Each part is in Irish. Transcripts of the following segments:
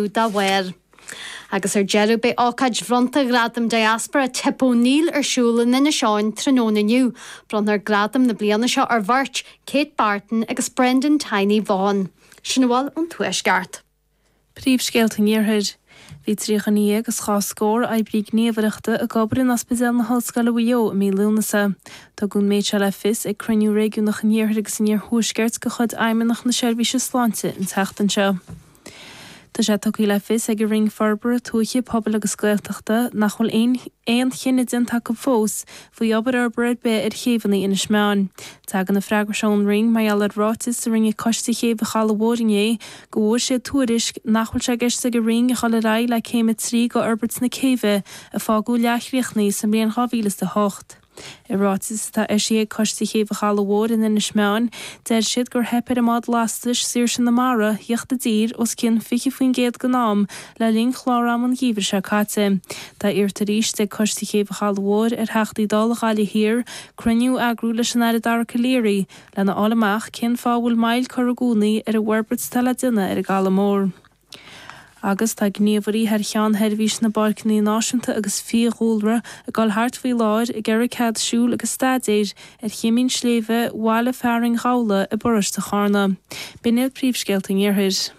dá bharr. Agus ar deireadh, beidh ócáid bhronnta Ghradaim Diaspora Tip O'Neill ar siúl in Inis Eoghain tráthnóna inniu. Bronnfar gradam na bliana seo ar bheirt, Kate Barton agus Brendan Tiny Vaughan. Sin a bhfuil ón Tuaisceart. Príomhscéalta an Iarthair. Bhí trí dhuine dhéag agus dhá scór oibrí gníomhaireachta ag obair in Ospidéal na hOllscoile Mhaigh Eo i mí Lúnasa. Tugadh an méid seo le fios ag cruinniú réigiúnach an Iarthair agus an Iarthuaiscirt de chuid Fheidhmeannacht na Seirbhíse Sláinte an tseachtain seo. Tá sé tugtha le fios ag an Roinn Forbartha Tuaithe, Pobail agus Gaeltachta nach bhfuil aon chinneadh déanta acu fós faoi obair fhorbartha ar bith ar chéibheanna Inis Meáin. Tagann an freagra sin ón Roinn mar gheall ar ráiteas a rinne Coiste Chéibh an Chalaidh Mhóir inné go bhfuair siad tuairisc nach bhfuil sé i gceist ag an Roinn a dhul ar aghaidh le Céim 3 de fhorbairt na céibhe a fágadh leathchríochnaithe sa mbliain 2008. I ráiteas atá eisithe ag Coiste Chéibh an Chalaidh Mhóir in Inis Meáin, deir siad gur theip ar a mbád lastais Saoirse na Mara theacht i dtír os cionn 20% den am le linn chlár ama an gheimhridh seo caite. Tá iarrta arís ag Coiste Chéibh an Chalaidh Mhóir ar Theachtaí Dála Ghaillimh Thiar cruinniú a eagrú leis an Aire Dara Calleary lena fháil amach cén fáth a bhfuil moill curtha i gcónaí ar an bhforbairt atá le déanamh ar an gCaladh Mór. agus tá gníomhairí thar cheann Sheirbhís na bPáirceanna Náisiúnta agus Fiadhúlra ag dul thart faoi láthair ag iarraidh cead siúil agus staidéir ar Choimín Sléibhe bhaile fearainn Ghabhla i bparóiste Charna. B'in iad Príomhscéalta an Iarthair.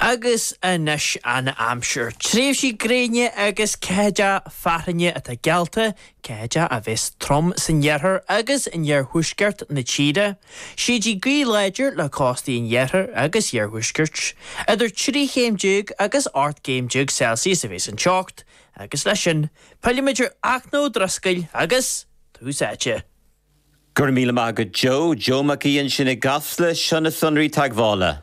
Agus anois an aimsir. Tréimhsí gréine agus ceatha fearthainne atá geallta, ceatha a bheas trom san iarthar agus in iarthuaisceart na tíre. Séideadh gaoithe láidir le cóstaí an iarthair agus iarthuaiscirt. Idir trí chéim déag agus ocht gcéim déag Celsius a bheas an teocht, agus leis sin, fillfimid ar Fhachtna Ó Drisceoil agus Tús Áite. Go raibh míle maith agat Joe, Joe Mac Aoidh ansin i gCasla, seo na sonraí teagmhála.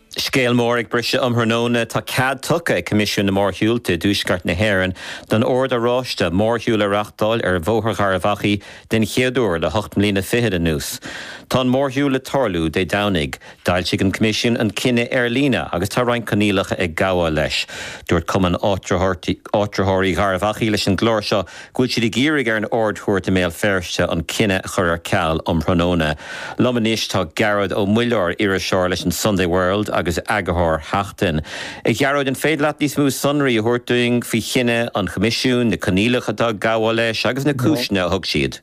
Scéal mór ag briseadh um thráthnóna. Tá cead tugtha ag Coimisiún na Mórshiúlta i dTuaisceart na hÉireann don Ord Oráiste mórshiúl a reáchtáil ar Bhóthar Gharbh Achaidh den chéad uair le hocht mbliana fichead anuas. Tá an mórshiúl le tarlú Dé Domhnaigh. D'fhoilsigh an Coimisiún an cinneadh ar líne agus tá roinnt coinníollacha ag gabháil leis. Dúirt Cumann Áitritheoirí Gharbh Achaidh leis an gclár seo go bhfuil siad ag iarraidh ar an Ard-Chúirt i mBéal Feirste an cinneadh a chur ar ceal um thráthnóna. Liom anois tá Gearóid Ó Muilleoir, iriseoir leis an Sunday World agus eagarthóir Sheachtain. A Ghearóid, an féidir leat níos mó sonraí a thabhairt dúinn faoi chinneadh an Choimisiúin, na coinníollacha atá ag gabháil leis agus na cúiseanna a thug siad?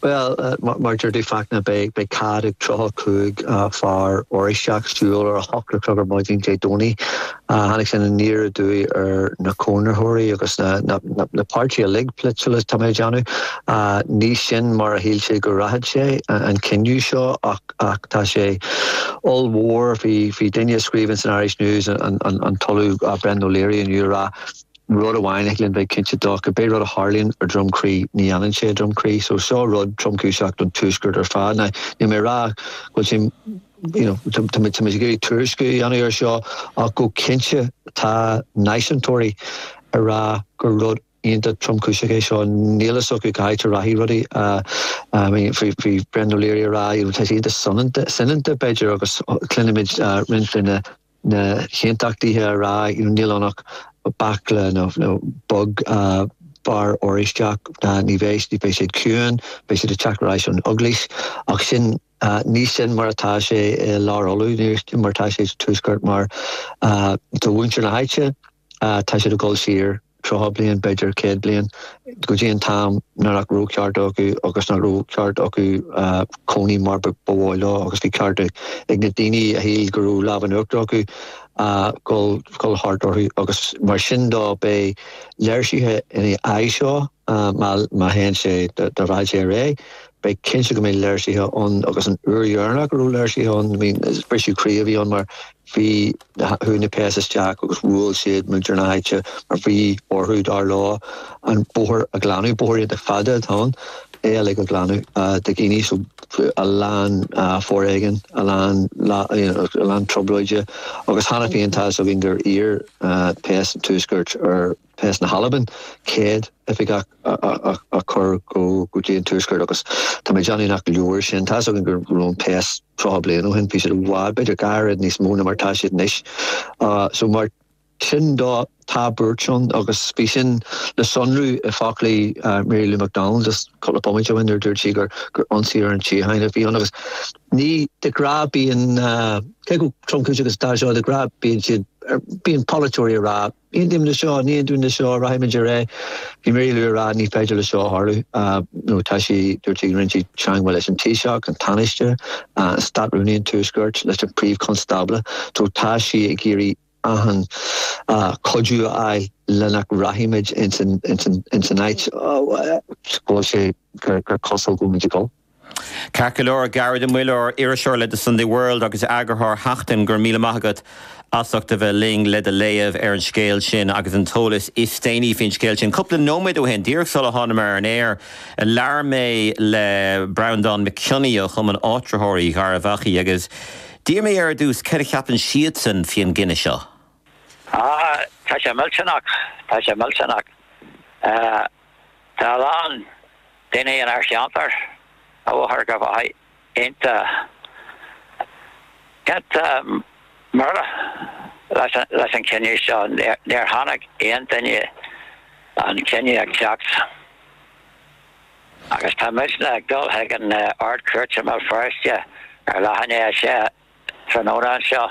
Bhuel, mar deir tú, Fachtna, beidh cead ag 35 fear Oráisteach siúl ar a hocht a chlog ar maidin Dé Domhnaigh. Tháinig sin aniar aduaidh ar na cónaitheoirí agus na páirtithe uilig polaitiúla, tá mé ag déanamh. Ní sin mar a shíl siad go rachadh sé, an cinneadh seo, ach tá sé ollmhór. Bhí duine a scríobhann san Irish News, an tOllamh Brendan O'Leary, inniu a rá, Rud amháin a thig linn bheith cinnte dó, cibé rud a tharlaíonn i nDroim Crí, ní fhanann sé i nDroim Crí. So seo rud tromchúiseach don Tuaisceart ar fad. Now, níl mé ag rá go bhfuil sé, you know, tá muid ag iarraidh tuairisciú a dhéanamh air seo, ach go cinnte tá náisiúntóirí ag rá gur rud iontach tromchúiseach é seo. Níl fhios acu cá háit a rachaidh rudaí. I mean, bhí Brendan O'Leary ag rá, tá sé iontach soineanta, b'fhéidir, agus cluinimid roinnt de na. na hAontachtaithe a rá you know níl ann ach baicle beag fear Oráisteach ná ní bheidh beidh siad ciúin, beidh siad ag teacht ar ais ón Eaglais ach sin ní sin mar atá sé i Lár Uladh, ní mar atá sé sa Tuaisceart mar do mhuintir na háite, Tá siad ag dul siar tríocha bliain, b'fhéidir céad bliain, go dtí an t-am nach raibh cearta acu agus nach raibh ceart acu cónaí mar ba mhaith leo agus bhí ceart ag na daoine a shíl go raibh lámh in uachtar acu dul thart orthu agus mar sin dó beidh léirsithe ina aghaidh seo. Má théann sé dá rachadh sé ar aghaidh, beidh cinnte go mbeidh léirsithe ann agus an uair dheireanach a raibh léirsithe ann, briseadh croí a bhí ann mar bhí, chuaigh na péas isteach agus bhuail siad muintir na háite mar bhí orthu, dar leo, an bóthar a ghlanadh, bóthar iontach fada atá ann, é uilig a ghlanadh de dhaoine, so a lán foréigin, a lán lá, you know, a lán trioblóide agus cheana féin tá 'fhios againn gur iarr péas an Tuaiscirt ar. Phéas na hAlban, 100 oifigeach a chur go dtí an Tuaisceart agus tá mé ag déanamh nach leor sin. Tá's againn go raibh na péas 30 bliain ó shin, bhí siad i bhfad, b'fhéidir dhá oiread níos mó ná mar atá siad anois. So mar sin dó, tá buairt ann agus bhí sin le sonrú i bhfoclaí Mary Lou McDonald just cúpla bomaite ó shin nuair a dúirt sí gur ionsaí ar an tsíocháin a bhí ann agus ní de ghnáth bíonn, cé chomh tromchúiseach agus atá seo, de ghnáth bíonn siad, bíonn polaiteoirí ag rá. Aontaím le seo, ní aontaím le seo, rachaimid ar aghaidh. Bhí Mary Lou ag rá ní féidir le seo tarlú. Now tá sí, dúirt sí go rinne sí teangmháil leis an Taoiseach, an Tánaiste, an Státrúnaí an Tuaiscirt, leis an Príomh-Chonstábla. So tá sí ag iarraidh achan cuidiú a fháil le nach rachaimid ins an áit go bhfuil sé gur cosúil go bhfuilimid ag dul. Ceart go leor, Gearóid Ó Muilleoir, iriseoir le The Sunday World agus eagarthóir Sheachtain, go raibh míle maith agat as ucht a bheith linn le do léamh ar an scéal sin agus an t-eolas is déanaí faoin scéal sin. Cúpla nóiméad ó shin, díreach sular thánamar ar an aer, labhair mé le Breandán McKionney ó Chumann Áitritheoirí Gharbh Achaidh agus d'iarr mé air ar dtús céard a cheapann siadsan faoin gcinneadh seo. Ah, tá sé millteanach, tá sé millteanach. Tá a lán daoine inár cheantar atá go hiontach iontach buartha leis an leis an cinneadh seo. Níor chonaic aon duine an cinneadh ag teacht agus tá muidne ag dul chuig an Ard-Chúirt i mBéal Feirste ar leath i ndiaidh a sé tráthnóna seo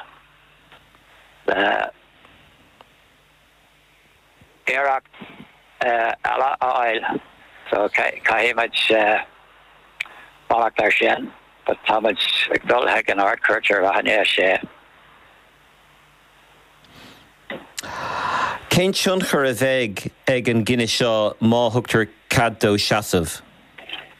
le héisteacht eile a fháil, so caithfimid fanacht air sin, but táimid ag dul chuig an Ard-Chúirt ar leath i ndiaidh a sé. Cén tionchar a bheidh ag an gcinneadh seo má thugtar cead dó seasamh?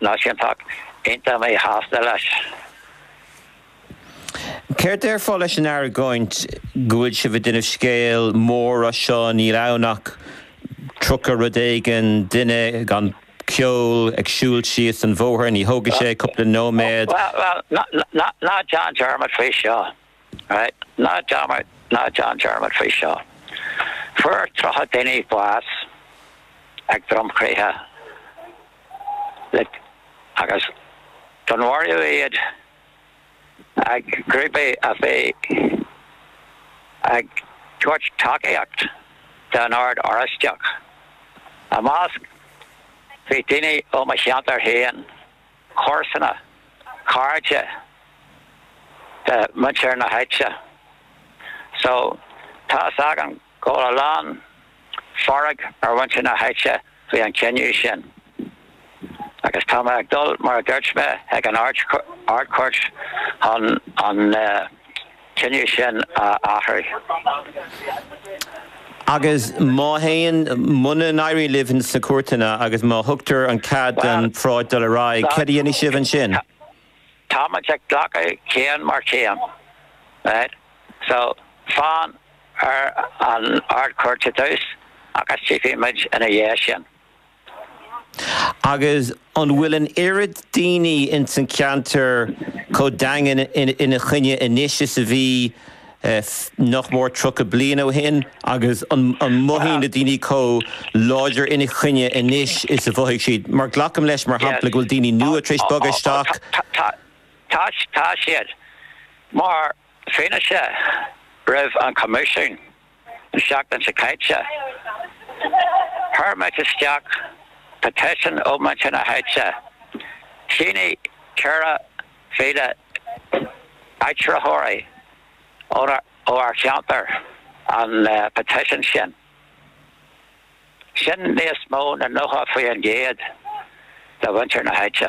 Ní sinn ach iontach míshásta leis. Céard déarfá leis an argóint go bhfuil sibh ag déanamh scéil mór as seo, níl ann ach tríocha rud éigin, duine gan cheol ag siúl síos an bhóthair, ní thógfaidh sé cúpla nóiméad. Bhuel, bhuel, ná déan dearmad faoi seo. Ná, ná déan dearmad faoi seo. Fuair tríocha duine bás ag Droim Crí agus dúnmharaíodh iad ag grúpaí a bhí ag tabhairt tacaíocht don Ord Oráisteach ina measc, bhí daoine ó mo cheantar féin, comharsana, cairde de mhuintir na háite. So, tá a fhios agam go bhfuil a lán fearg ar mhuintir na háite faoi an cinneadh sin agus tá mé ag dul, mar a dúirt mé, chuig an Ard-Chúirt chun an. cinneadh sin a athrú. Agus má théann, muna n-éiríonn libh sna cúirteanna agus má thugtar an cead don pharáid dul ar aghaidh, céard a dhéanfaidh sibh ansin? Táimid ag glacadh céim ar chéim. So, fan ar an Ard-Chúirt ar dtús agus tchífimid ina dhiaidh sin. Agus an bhfuil an oiread daoine ins an cheantar chomh daingean ina choinne anois is a bhí nach mór tríocha bliain ó shin agus an mothaíonn na daoine chomh láidir ina choinne anois is a mhothaigh siad? Mar glacaim leis, mar shampla, go bhfuil daoine nua tar éis bogadh isteach. Tá, tá siad. Mar fianaise roimh an Choimisiún. an seachtain seo caite. Chuir muid isteach petition ó muintir na háite. Shínigh 4,000 áitritheoir ó ár cheantar an petition sin. Sin níos mó na 90% de mhuintir na háite.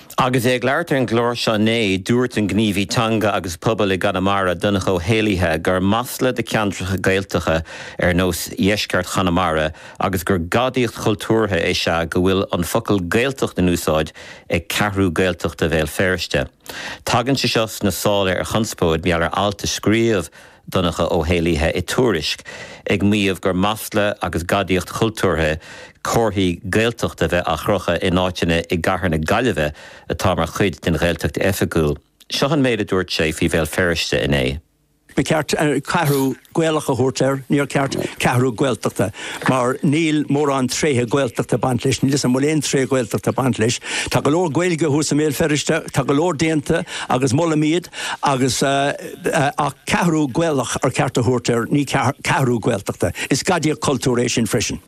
Agus é ag labhairt ar an gclár seo inné, dúirt an gníomhaí teanga agus pobail i gConamara, Donncha Ó hÉallaithe, gur masla do cheantracha Gaeltactha ar nós dheisceart Chonamara agus gur gadaíocht chultúrtha is ea go bhfuil an focal 'Gaeltacht' in úsáid ag Ceathrú Gaeltachta Bhéal Feirste. Tagann sé seo sna sála ar chonspóid mar gheall ar alt a scríobh Donncha Ó hÉallaithe i Tuairisc ag maíomh gur masla agus gadaíocht chultúrtha comharthaí Gaeltachta a bheith á gcrochadh in áiteanna i gcathair na Gaillimhe atá mar chuid den Ghaeltacht oifigiúil. Seo an méid a dúirt sé faoi Bhéal Feirste inné. Ba cheart Ceathrú Gaelach a thabhairt air, níor cheart Ceathrú Gaeltachta, mar níl mórán tréithe Gaeltachta ag baint leis, níl a fhios agam an bhfuil aon tréith Ghaeltachta ag baint leis. Tá go leor Gaeilge thuas i mBéal Feirste, tá go leor déanta agus molaim iad agus, ach ceathrú Gaelach ar cheart a thabhairt air, ní ceathrú Gaeltachta. Is gadaíocht cultúir é sin freisin.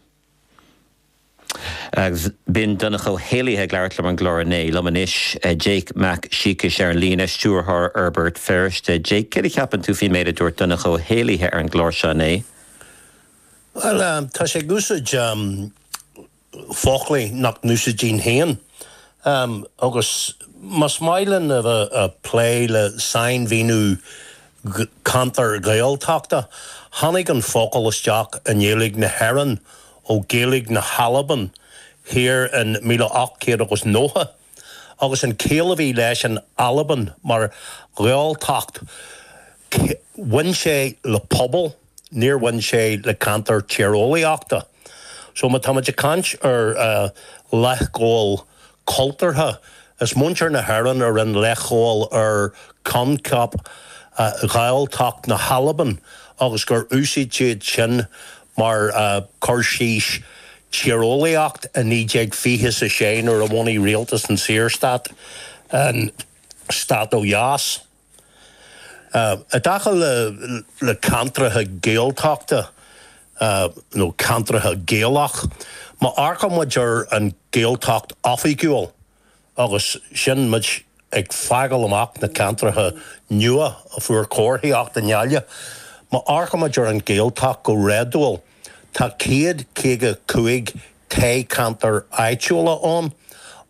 Agus b'in Donncha Ó hÉallaithe ag labhairt liom ar an gclár inné. Liom anois, Jake Mac Siacais ar an líne, Stiúrthóir Fhorbairt Feirste. Jake, céard a cheapann tú faoin méid a dúirt Donncha Ó hÉallaithe ar an gclár seo inné? Bhuel, tá sé ag úsáid foclaí nach n-úsáidfinn féin agus más maith linn a bheith a' plé le sainmhíniú ceantar Gaeltachta, tháinig an focal isteach i nGaeilge na hÉireann ó Ghaeilge na hAlban thiar in 1890. agus an chiall a bhí leis in Albain mar Ghaeltacht, bhain sé le pobal, níor bhain sé le ceantar tíreolaíochta. So má táimid ag caint ar leithghabháil cultúrtha, is muintir na hÉireann a rinne leithghabháil ar choincheap Ghaeltacht na hAlban agus gur úsáid siad sin mar chur síos Tíreolaíocht i 1926 nuair a bhunaigh rialtas an Saorstát an Stát ó Dheas. I dtaca le ceantracha Gaeltachta nó ceantracha Gaelach, má amharcaimid ar an Ghaeltacht oifigiúil, agus sin muid ag fágáil amach na ceantracha nua a fuair comharthaíocht i nGaillimh. Má amharcaimid ar an Ghaeltacht go réadúil, tá céad caoga cúig toghcheantar áitiúla ann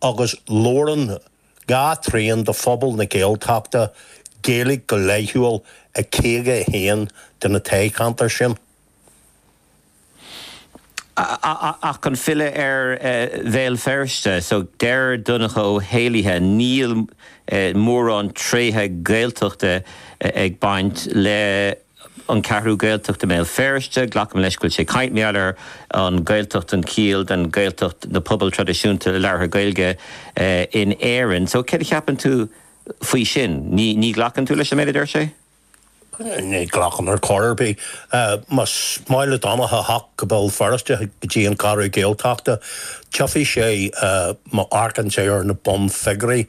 agus labhrann dhá thrian de phobal na Gaeltachta Gaeilge go laethúil i caoga a haon de na toghcheantair sin. Ach chun filleadh ar Bhéal Feirste, so deir Donncha Ó hÉallaithe, Níl mórán tréithe Gaeltachta ag baint le An Cheathrú Ghaeltachta i mBéal Feirste. Glacaim leis go bhfuil sé ag caint mar gheall ar an Ghaeltacht an chiall den Ghaeltacht na pobail traidisiúnta labhartha Gaeilge in Éirinn. So céard a cheapann tú faoi sin? Ní ghlacann tú leis an méid a deir sé? Ní ghlacaim ar chor ar bith. Más maith le Donncha a theacht go Béal Feirste, go dtí an Cheathrú Ghaeltachta, tchífidh sé, má amharcann tú ar na bunfhigiúirí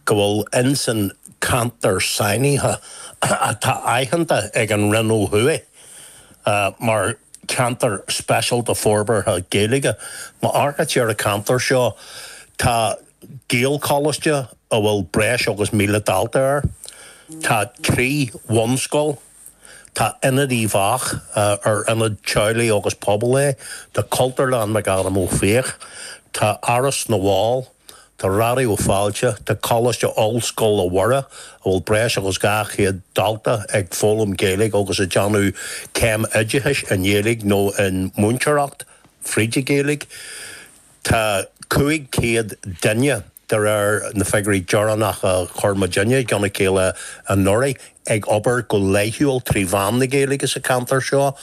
go bhfuil ins an ceantar sainithe atá aitheanta ag an Roinn ó thuaidh mar Cheantar Speisialta Forbartha Gaeilge, má amharcann tú ar an cheantar seo tá. Gaelcholáiste a bhfuil breis agus 1,000 dalta air. Tá trí bhunscoil. Tá Ionad Uíbh Eachach, ar ionad teaghlaigh agus pobail é. Tá Cultúrlann McAdam Ó Fiaich. Tá Áras na bhFál. Tá Raidió Fáilte. Tá Coláiste Ollscoile Mhuire, a bhfuil breis agus 200 dalta ag foghlaim Gaeilge agus ag déanamh céim oideachais i nGaeilge nó i múinteoireacht fríd an Ghaeilge. Tá 500 duine, de réir na figiúirí deireanacha a chuir muidinne i gceann a chéile anuraidh, ag obair go laethúil trí mheán na Gaeilge sa cheantar seo.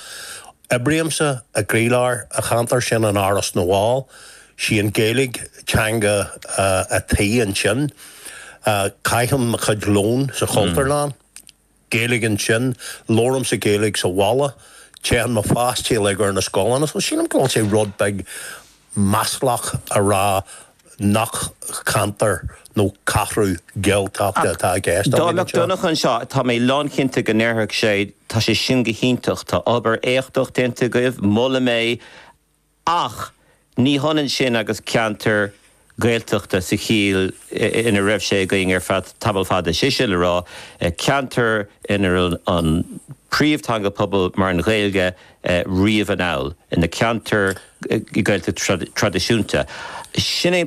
Oibrímse i gcroílár an cheantair sin in Áras na bhFál. 'Sí an Ghaeilge teanga a' tí ansin. Caithim mo chuid lóin sa Chultúrlann. Gaeilge ansin, labhraímse Gaeilge sa bhaile, téann mo pháistí uilig ar na scoileanna, so sílim go bhfuil sé rud beag maslach a rá nach ceantar nó ceathrú Gaeltachta atá i gceist againn anseo. Ach, dá mbeadh Donncha anseo, tá mé lánchinnte go ndéarfadh sé, tá sé sin go hiontach, tá obair éachtach déanta agaibh, molaim é, Ach ní hionann sin agus ceantar Gaeltachta sa chiall ina raibh sé againn ar tamall fada, is é sin le rá, ceantar inarb an príomhtheanga pobail mar an Ghaeilge riamh anall, na ceantair Gaeltachta traidisiúnta. Sin é an.